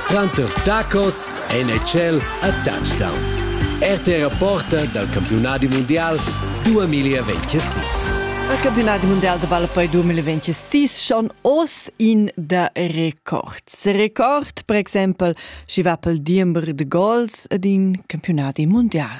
Tranter tacos NHL a touchdowns. RTR Porta dal campiunadi mundial 2026. Il campionat mondial da ball poi 2026 schon oz in da record. Record, per exempel, schi va pel diember de gols ed in campionat mondial.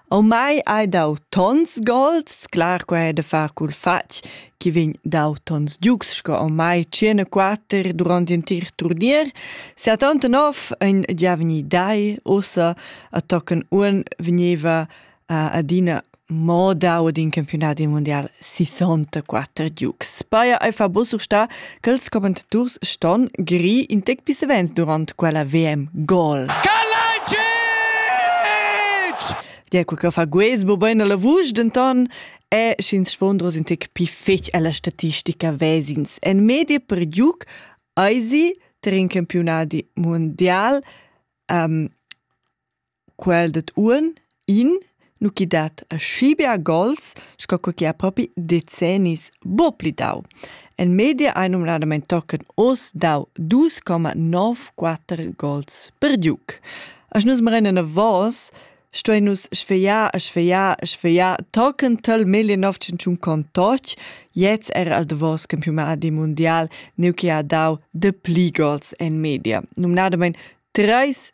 Au mai hai dau tons golds, clar quai è da far cul fatg chi vegn dau tons giugs sco au mai tschient e quatter durant ün tir turnier. Sia tanta nov ein gia vegni dai, ussa a tochen uonn vegneva uh, adina mo dau ad in campiunat mundial 64 giugs. Paia ei fa buca sta Quels commentadors ston giri in tec pis savens durant quella VM gol. Dia quel che fa guesbo bene la vusch, denton è sch'ins sfondros in tec pli fetg alla statistica vesins. En media per giuc eisi ter in campionati mondial um, Quel dad uonn in nu chi dat aschi bia gols sco co chi ha propi decennis buc pli dau. En media hai numnadamain tochen oz dau dus comma nov quatter gols per giug. As nus marein enavos, stuein nus sfegliar e sfegliar e sfegliar tochen tal 1901 con toch, jetzt era al davos campionati mundial, neu che ha dau de pli gols en media. Numnadamain treis